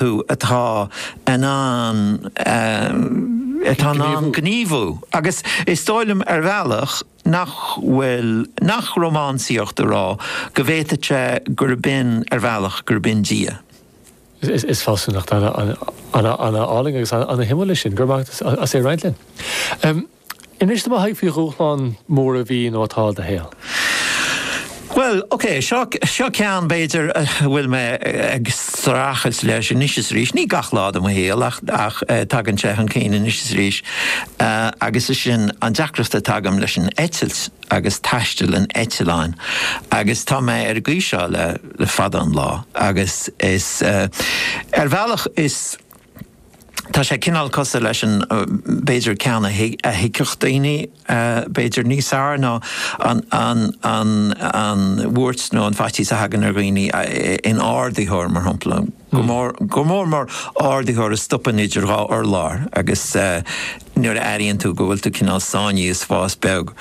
thú atá in ann, atá in ann gníomhú agus is dóigh liom ar bhealach nach bhfuil, nach rómánsaíocht a rá go bhféadfadh sé gurb in, ar bhealach, gurb in Dia. Is fealsúnacht ana álainn agus ana shuimiúil í sin. Go raibh maith agat as é a roinnt linn. Inis dom a Thaidhg faoi dhúshlán mhór a bhí nó atá i do shaol. Bhuel, ok, seo, seo ceann b'fhéidir a bhfuil mé ag streachailt leis anois is arís, ní gach lá de mo shaol ach, ach tagann sé chun cinn anois is arís agus sé sin an deacracht atá agam leis an eitilt agus taisteal in eitleáin agus tá mé ar an gcaoi seo le fada an lá agus is, ar bhealach is. Tá sé cineál cosúil leis an, b'fhéidir, ceann a thuigfeadh daoine, b'fhéidir, níos fearr ná an bhuairt nó an faitíos a thagann ar dhaoine in ardaitheoir, mar shampla. Go mór mór más ardaitheoir a stopann idir dhá urlár agus. nuair a airíonn tú go bhfuil tú cineál sáinnithe i spás beag.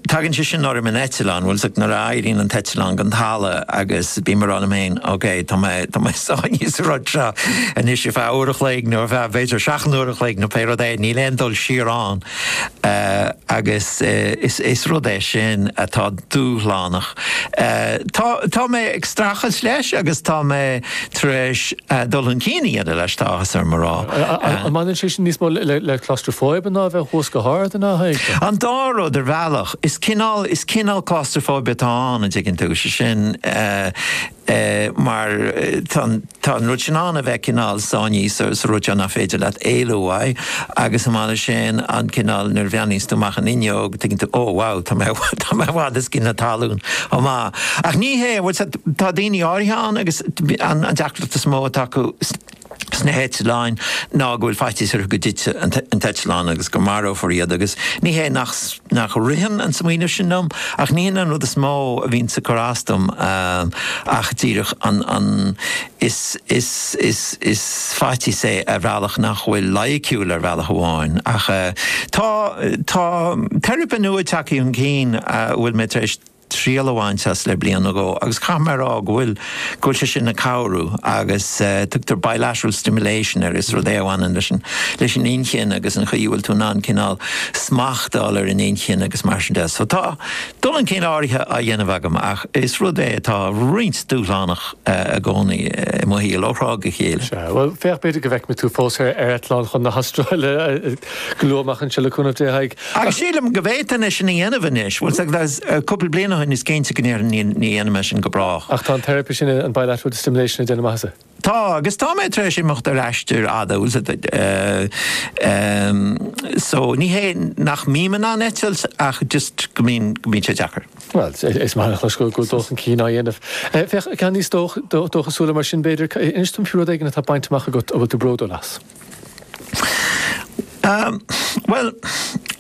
Tagann sé sin orm in eitleán, bhfuil a fhios agat, nuair a éiríonn an t-eitleán den talamh agus bím ag rá liom féin, ok, tá mé, tá mé sáinnithe sa rud seo anois ar feadh uair an chloig nó ar feadh, b'fhéidir, seacht n-uair an chloig nó pé rud é, níl aon dul siar ann. Agus is, is rud é sin atá dúshlánach. Tá, tá mé ag streachailt leis agus tá mé. tar éis dul chun cinn a dhéanamh leis, tá áthas orm a rá. An mbaineann sé sin níos mó le claustrophobia ná a bheith thuas go hard a Thaidhg? An dá rud ar bhealach. Is cineál, is cineál claustrophobia atá ann, an dtuigeann tú, sé sin mar tá an, tá an rud sin ann a bheith cineál sáinnithe sa rud seo nach féidir leat éalú uaidh agus chomh maith leis sin an cineál nuair a bhreathnaíonns tú amach an fhuinneog tuigeann tú, oh wow, tá mé, tá mé i bhfad os cionn na talún chomh maith. Ach ní hé, bhuel. Tá daoine áirithe ann agus an deacracht is mó atá acu sna heitleáin ná go bhfuil faitíos orthu go dtitfidh an t-eitleán agus go marófar iad agus ní hé nach ritheann an smaoineamh sin liom ach ní hin an rud is mó a bhíonns ag cur as dom ach díreach an faitíos é ar bhealach nach bhfuil loighiciúil ar bhealach amháin ach tá teiripe nua ag teacht chun cinn a bhfuil mé tar éis triail a bhaint as le bliain nó dhó agus caithfidh mé a rá go bhfuil, go bhfuil sé sin ag cabhrú agus tugtar bilateral stimulation air, is rud é a bhaineann leis an, leis an inchinn agus an chaoi a bhfuil tú in ann cineál smacht a fháil ar an inchinn agus mar sin de. So tá dul chun cinn áirithe á dhéanamh agam ach is rud é atá roinnt dúshlánach i gcónaí i mo shaol ó thráth go chéile. Sea, bhuel, féach, b'fhéidir go bhfeicfidh mé tú fós ar eitleán chun na hAstráile go luath amach anseo le cúnamh Dé, a Thaidhg. Ach sílim go bhféadfainn é sin a dhéanamh anois. Bhuel, is ea, cúpla bliain ó shin is cinnte go ndéarfainn ní dhéanfaidh mé sin go brách. Ach tá an teiripe sin, an bilateral stimulation, ag déanamh maitheasa. Tá, agus tá mé tar éis imeacht ar aistear fada, bhuel, so, ní hé nach mbím in ann eitilt ach just go mbíonn sé deacair. Bhuel, is maith liom a chlos go bhfuil dul chun cinn á dhéanamh. Féach, ceann níos dóchasúla mar sin, b'fhéidir, inis dom faoi rud éigin atá bainte amach agat a bhfuil tú bródúil as. Bhuel,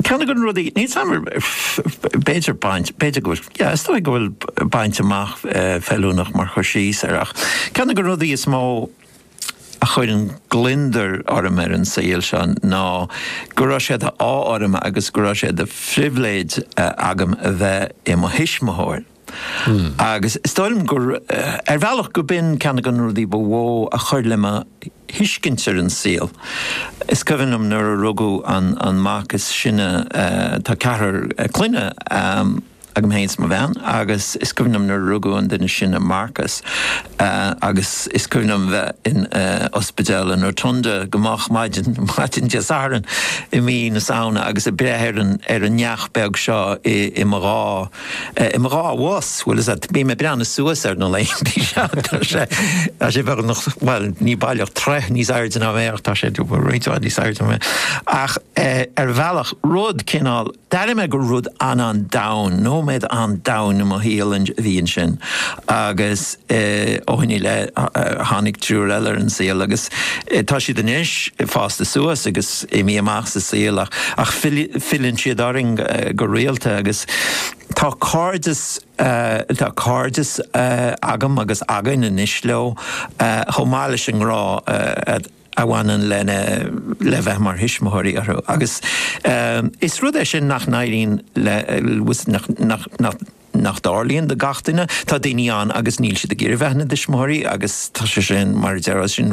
ceann de na rudaí, ní fheadar, b'fhéidir baint, b'fhéidir go bhfuil, yeah, is dóigh go bhfuil baint amach feiliúnach mar chur síos air ach ceann de na rudaí is mó a chuireann gliondar orm ar an saol seo ná go raibh sé d'ádh orm agus go raibh sé de phribhléid agam a bheith i mo thuismitheoir. Agus is dóigh liom gur, ar bhealach, go b'in ceann de na rudaí ba mhó a chuir le mo thuiscint ar an saol. Is cuimhin liom nuair a rugadh an mac is sine, tá ceathrar clainne agam féin is mo bhean, agus is cuimhin liom nuair a rugadh an duine is sine, Marcus, agus is cuimhin liom bheith in ospidéal an Rotunda go moch, maidin, maidin Dé Sathairn i mí na Samhna agus ag breith ar an neach beag seo i mo dhá. I mo dhá bhois, bhuel, is ea, bím ag breathnú suas air na laethanta seo, tá sé, tá sé beagnach, bhuel, ní baileach troigh níos airde ná mé ach tá sé roinnt mhaith níos airde ná mé. Ach ar bhealach, rud cineál, d'airigh mé gur rud an-an-domhain, nóiméad an-domhain i mo shaol a bhí ansin agus, ó shoin i leith tháinig triúr eile ar an saol agus tá siad anois fásta suas agus imithe amach sa saol ach filleann siad orainn go rialta agus tá cairdeas tá cairdeas agam agus againn anois leo chomh maith leis an ngrá a bhaineann lena le bheith mar thuismitheoirí orthu agus is rud é sin nach n-éiríonn le nach nach nach dtarlaíonn do gach duine. Tá daoine ann agus níl siad ag iarraidh bheith ina dtuismitheoirí agus tá sé sin, mar a déarfá, sin.